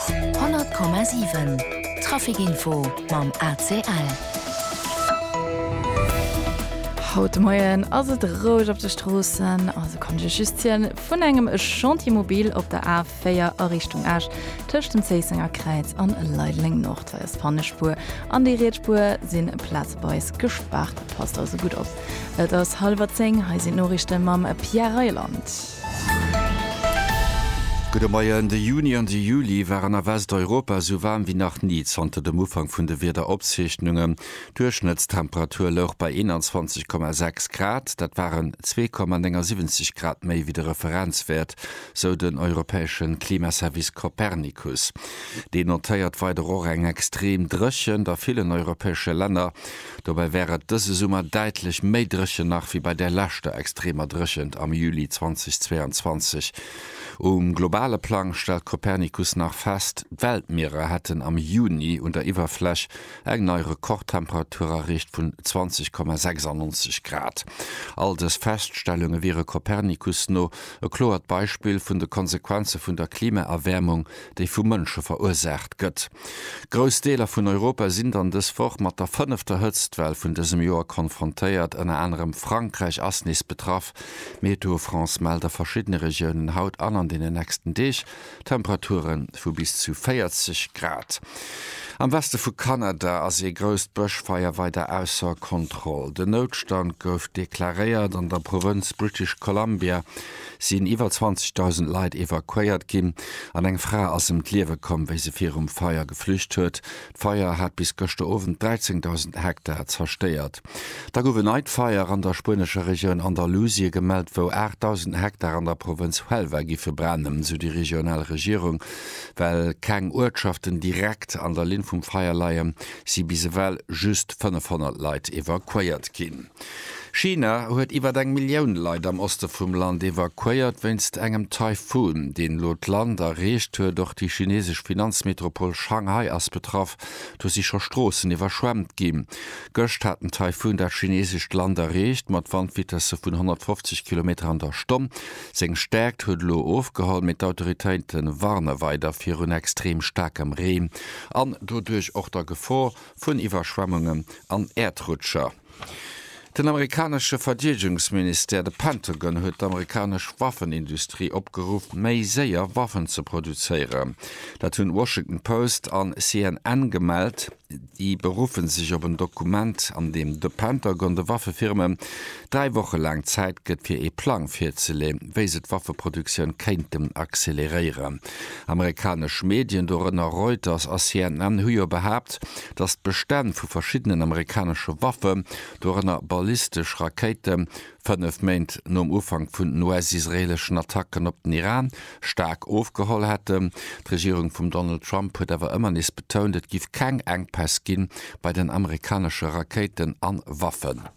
100,7 Trafic Info mam ACL. Haut de Moien ass et roueg op de Stroossen, also konnt ech lech just zielen, vun engem Chantier mobil op der A4 a Richtung Esch tëscht dem Zéissenger Kräiz an Leideleng Nord. Hei ass d'Panne Spuer an déi riets Spuer sinn plazeweis gespaart, passt also gutt op. Et ass hallwer 10, hei sinn d'Noriichte mam Pierre Reyland. Gudde Moien. De Juni an de Juli waren a Westeuropa esou waarm wéi nach ni zanter dem Ufank vun de Wiederopzeechnungen. D'Duerchschnëttstemperatur louch bei 21,6 Grad, dat waren 2,79 Grad méi wéi de Referenzwäert, sou den europäesche Klimaservice Copernicus. Deen notéiert weider och eng extrem Dréchent a villen europäesche Länner. Dobäi wär et dëse Summer däitlech méi dréchen nach wéi bei där leschter extremer Dréchent am Juli 2022. Um globale Plang stellt Copernicus nach fest, d'Weltmierer hätten am Juni un der Iwwerfläch eng nei Rekordtemperatur erreecht vun 20,96 Grad. All dës Feststellunge wiere Copernicus no e kloert Beispill vun de Konsequenze vun der Klimaerwäermung, déi vu Mënsche verursaacht gëtt. Grouss Deeler vun Europa sinn dann dës Woch mat der fënnefter Hëtztwell vun dësem Joer konfrontéiert. Ënner anerem Frankräich ass nees betraff. Météo France mellt a verschiddene Regiounen haut an an deenen nächsten Deeg Temperature vu bis zu 40 Grad. Am Weste vu Kanada ass ee grousst Bëschfeier weider ausser Kontroll. Den Noutstand gouf deklaréiert an der Provënz British Columbia, sinn iwwer 20.000 Leit evakuéiert ginn an eng Fra ass ëm d'Liewe komm, wéi se virum Feier geflücht huet. D'Feier hat bis gëschter Owend 13.000 Hektar zerstéiert. Da gouf en neit Feier an der spuenescher Regioun Andalusie gemellt, wou 8.000 Hektar an der Provënz Huelva gi verbrennen, sou déi regional Regierung. Well keng Uertschaften direkt an der Linn vum Feier leien, si bis ewell just 500 Leit evakuéiert ginn. China huet iwwert eng Millioun Leit am Oste vum Land evakuéiert wéinst engem Taifun, deen elo d'Land erreecht huet. Och déi chinesesch Finanzmetropol Shanghai ass betraff, do si scho Stroossen iwwerschwemmt ginn. Gëscht hat den Taifun dat chinesescht Land erreecht, mat Wandvitesse vun 150 Kilometer an der Stonn. Seng Stäerkt huet elo ofgeholl, mee d'Autoritéite warne weider virun extrem staarkem Reen an doduerch och der Gefor, vun Iwwerschwemmungen an Äerdrutscher. Den amerikanesche Verdeedegungsministère, de Pentagon, huet d'amerikanesch Waffenindustrie opgeruff, méi séier Waffen ze produzéieren. Dat hunn Washington Post an CNN gemellt. Déi beruffe sech op en Dokument, an deem de Pentagon de Waffefirmen Dräi Woche laang Zäit gëtt fir ee Plang virzeleeën, wéi se d'Waffeproduktioun kéinten acceleréieren. Amerikanesch Medien, dorënner Reuters a CNN, hu jo behaapt, datt d'Bestänn vu verschiddenen amerikanesche Waffen, dorënner ballistesch Rakéiten, fënnef Méint nom Ufank vun den US-israeeleschen Attacken op den Iran, staark ofgeholl hätten. D'Regierung vum Donald Trump huet awer ëmmer nees betount, et giff keng Enkpäss gi bei den amerikanesche Rakéiten an Waffen.